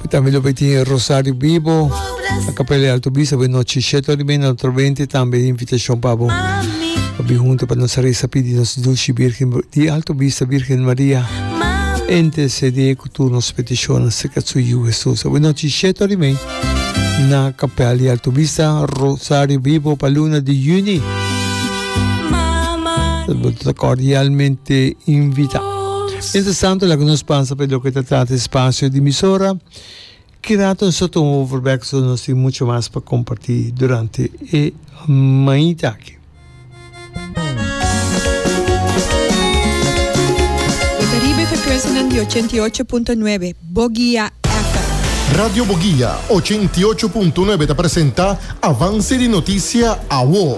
Tambe lo beti e Rosario Bibo na Kapel e Alto Bisa bo e nochi shet ora i media na otro benti tambe e invitashon pa bo pa bin huntu pa nos resa pidi nos Dushi Birgen di Alto Bisa Birgen Maria entesede ku tur nos petishonnan serka su Yu Hesus bo e nochi shet ora i mei na Kapel di Alto Bisa Rosario Bibo pa luna di Juni bo ta kordialmente invita. Mientras tanto, laga nos pasa pa e loke ta trata e spacio di emisora. Ki rato nos ta tuma bo voorbek zodat nos tin mucho mas pa comparti durante e mainta aki. Bo ta riba e frecuencianan di ochenta i ocho punto nuebe, Boguia FM. Radio Boguia ochenta i ocho punto nuebe ta presenta Avance di Noticia, Awo.